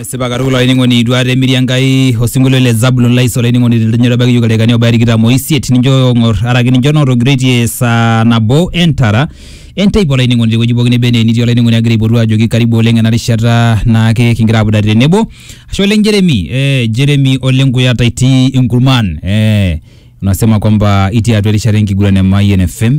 esipa katukul olainining'oni itu aata emiri enkai osinkolio le zabulon lais olainining'oni tentenyo etabaki yiok ildaikani obaya tikitam oisiet nincho ng'or araki nincho nootogiroitie saa nabo entara enteipa olainining'oni tewueji pookin neba enaa enitii olainining'oni agira aipotu ajoki karibu oleng ena rishata naake kingira apudare tenebo ashe oleng jeremi eh, jeremi oleng kuyata itii inkurman eh, unasema kwamba itii atua erishata enkiguran e Mayian FM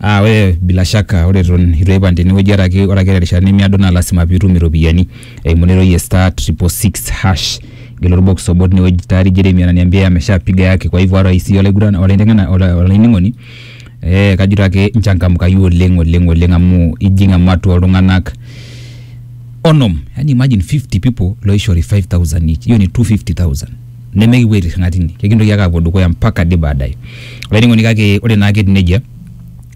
Ah, ore bila shaka ore eton itu aipang tenewueji ore ake ore ake terishata nemiado naa lasima pitum iropiyiani eimu ena oitoi e star triple six hash gelu orbox obo tinewueji tayari Jeremy ananiambia ameshapiga yake kwa hivyo hata sisi olaigurani olaiteng'ena ola olainining'oni eh kajito ake inchangamkayu oleng oleng oleng amu ijing ematua oltung'anak onom yani imagine fifty people loishori five thousand each hiyo ni two fifty thousand nemekipuo aitirring'a tine kekintoki ake aapuo dukuya mpaka ade baadaye olainining'oni kake ore naake etiu nejia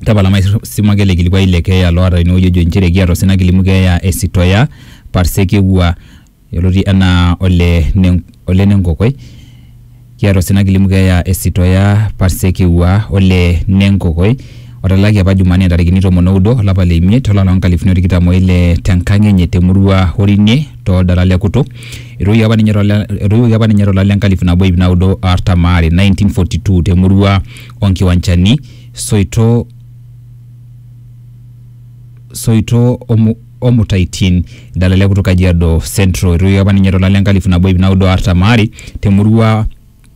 tapala maisuma ake ele kilikuai le keeya loota tenewueji ojo inchere ekiata osina kilimu keeya e Sitoya Parsekewua yioloti enaa ole ne ole Nenkokoi kiata osina kilimu keeya e Sitoya Parsekewua ole Nenkokoi otalaki apa Jumanne ntarikini tomon oudo olapa le imiet olapa loo nkalifuni o tikitam o ile tenkang enye temurua Orinie toldala le Kutu. Etoiwuoki apa ninye tolda- etoiwuoki apa ninye tolari le nkalifu nabo iip naudo o artam aare, 1942, temurua o Nkiwanchani, Soito Soito o Mu- o Mutaitin, Idala le Kutu Kajiado Central. Etoiwuoki apa ninye tolari le nkalifu nabo iip naudo o artam aare temurua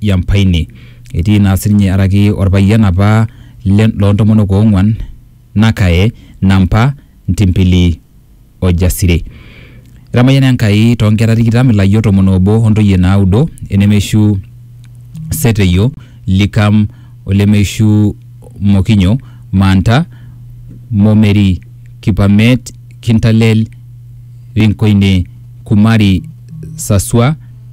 ya mpaine. Etii naa sininye araki orpayian apa le loo ntomonok oong'uan, Nakae, Nampa, Ntimpili o Jasire. Etamayiana Enkai too nkera tikitam, ilayiok tomon oobo o ntoyie naaudo, enemeishu Seteyo, Likam, olemeishu Mokinyo, Manta, Momeri, Kipamet, Kintalel, Rinkoine, Kumari, Sasua,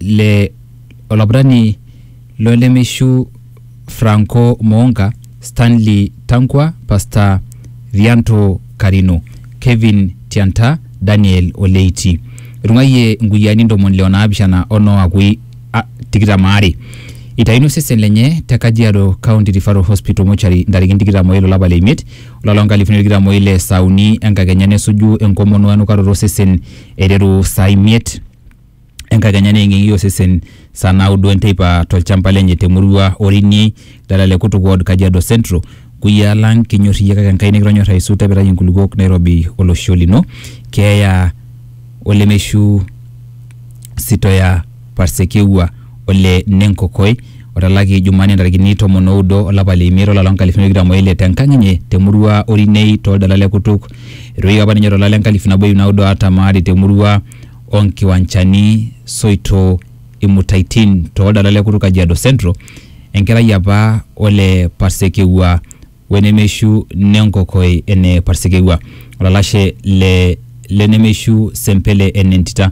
le olaputani lo lemeishu Franco Moonga, Stanley Tankwa, Pasta Vianto Karino, Kevin Tianta, Daniel Oleiti. Etung'ayie inkuyiaani ntomoni le onaapishana o noo akui a- tikitam aare. Eitayuni osesen lenye te Kajiado County Referral Hospital Mortuary ntarikini tikitam o ile olapa le imiet olari loo nkalifuni are o tikitam o ile saa uni enkakenya nesuju enkomono o enukaroto osesen eiteru saa imiet enkakenya neeng'eng'i osesen saa naudo enteipa tolchamba lenye temurua Orini dala le Kutuk ward Kajiado Central. Kuyiaa lang kinyor iyie kake Enkai nikitonyor aisul tepitai inkulukuok nairobi olosho lino. Keeya olemeishu Sitoya Parsekeiwa ole Nenkokoi otalaki Jumanne ntarikini tomon oudo olapa le imiet olari loo nkalifuni are o tikitam oile tenkang enye temurua Orinei toldala le Kutuk. Etoiwuoki apa ninye tolari le nkalifu nabo iip naudo o artam aare temurua o nkiwanchani, soito, imutaitin too ldala le Kutuk Kajiado Central, enkerai apa ole Parsekeiwa we nemeishu ne Nkokoi ene Parsekeiwa, olalashe le le nemeishu Sempele ene Ntita.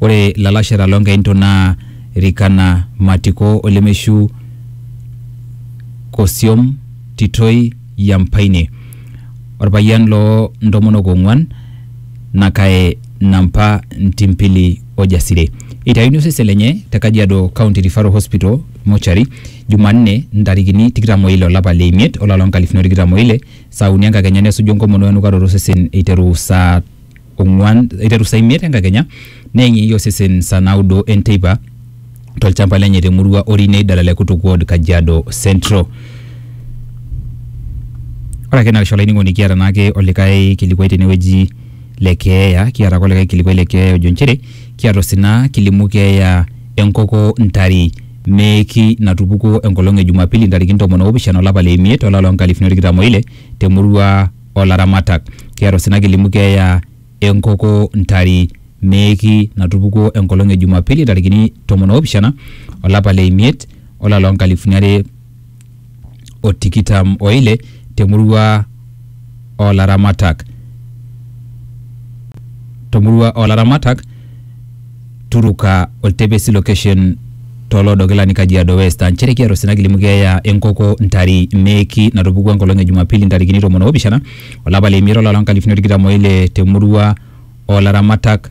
Ore ilalashera loo Nkainto naa Rikana, Matiko o lemeishu Kosiom, Titoi, Yampaine, orpayian loo ntomonok ong'uan Nakae Nampa Ntimpili o Jasire. Eitayuni osesen lenye te Kajiado County Referral Hospital Mortuary Jumanne ntarikini tikitam o ile o lapa le imiet o lari loo nkalifuni o tikitam o ile saa uni enkakenya nesuju enkomono o enukaroto osesen eiteru saa ong'uan eiteru saa imiet enkakenya neeng'ieng'i osesen saa naudo enteipa tolchamba lenye te murua Orinei Dalale Kutuk Ward Kajiado Central. Ore ake naisho olainining'oni kiata naake olikae kilikuai tenewueji le keeya, kiata ake olikae kilikuai le keeya ojo nchere kiata osina kilimu keeya enkoko Ntari Meeki natupukuo enkolong e Jumapili ntarikini tomon oopishana olapa le imiet olari loo nkalifuni tikitam oile te murua olaramatak. Kiata osina kilimu keeya enkoko Ntari Meeki natupukuo enkolong e Jumapili ntarikini tomon oopishana olapa le imiet olari loo nkalifuni are o tikitam o ile te murua oo laramatak to murua oo laramatak Turuka oltepesi location to Loodokilani Kajiado West aa nchere kiata osina kilimu keeya e nkoko Ntari Meeki natupukuo enkolong e Jumapili ntarikini tomon oopishana o lapa le imiet o lari loo nkalifuni o tikitam o ile te murua oo laramatak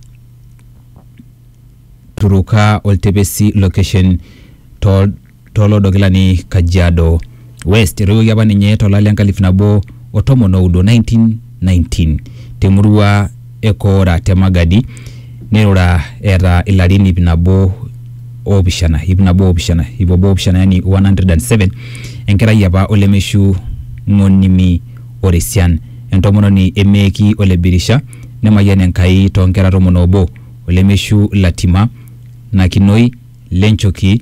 Turuka oltepesi location to tolodokilani Kajiado West. Etoiwuoki apa ninye tolari le nkalifu nabo o tomon oudo 1919 temurua e Koora te Magadi neirura eeta ilarin ip nabo oopishana ip nabo oopishana ip obo oopishana yani 107 enkerai apa olemeishu ng'onimi oresian entomononi emeeki ole Birisha nemayian Enkai too nkera tomon oobo olemeishu Latima Nakinoi Lenchoki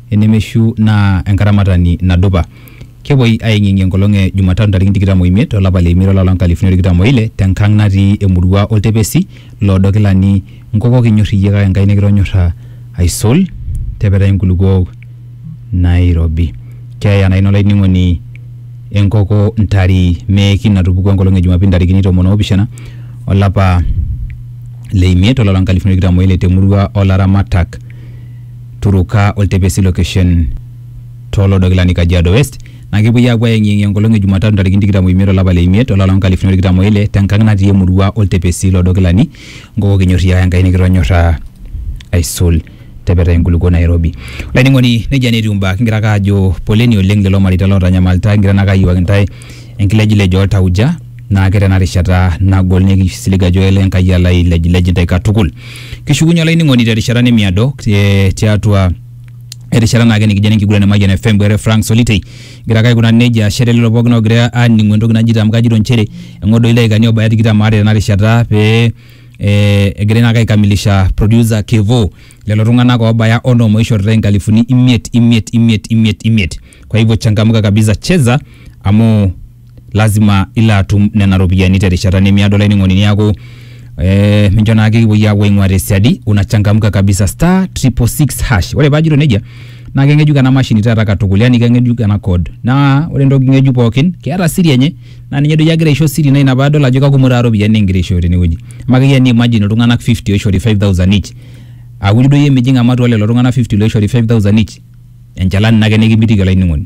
enemeshu naa enkaramatani nadupa. Kepuoi aeng'ieng'ie enkolong e Jumatatu ntarikini tikitam oimiet olapa le imiet olapa loo nkalifuni are o tikitam oile te nkang natii emurua Oltepesi loodo Kilani Nkoko kinyor iyie kake Enkai nikitonyorra aisul tepetai nkulupuok nairobi. Keeya naa ina olainining'oni enkoko ntari meeki natupukuo enkolong e Jumapili ntarikini tomon oopishana olapa le imiet olapa loo nkalifuni are o tikitam oile te murua oo laramatak. Turuka o Ltepesi Location too loodo kilani Kajiado West naa kepuoi apuo ayeng'iyeng' enkolong e Jumatatu ntarikini tikitam o imiet olapa le imiet olari loo nkalifuni are o tikitam o ile te nkang' natii emurua o Ltepesi loodo kilani Ngoko kinyorriaa Enkai nikitonyorraa aisul te petai enkulukuo Nairobi. Olainining'oni nejia naa etiu imbaa kigira ake aajo poleni oleng' lelo mareita lootanyamalita kigira naake ayiewaki intae enkilejilej oltauja naa ke tena rishata nagol neeku kisilig ajo ele Enkai alo ailejilej intae katukul. Kishukunye olainining'oni terishata nemiado te- tiatua erishata naake nikijo enenkiguran e Mayian FM bwere Frank Solitei egira ake aikunari nejia ashe te lelo pookin oogira aaning'u entoki najito amu kajito inchere eng'or doi ildaikani oobaya tikitam aare tena rishata pee eh, egirai naake aikamilisha producer Kevo lelo tung'anak oobaya onom oishoritae inkalifuni imiet imiet imiet imiet imiet kwa hivyo changamka kabisa cheza amu lazima ilo atum nena ropiyiani terishata nemiado olainining'oni niaku eh, mincho naake kipuoi aapuo aing'ua tesiadi unachangamka kabisa star triple six hash ore paajito nejia naa keng'ejuk ena mashini taata katukul yani keng'ejuk ena code naa ore entoki ng'ejuk pookin keeta siri enye naa ninye doi agira aisho siri naa ina paadol ajo kakumok taata iropiyiani nikingira aishooyo tenewueji amu akeyie ni imagine iltung'anak 50 oishori 5000 each auri doi emijing ematua lelo tung'anak 50 loishori 5000 each enchalan ina ake nikimitiki olainining'oni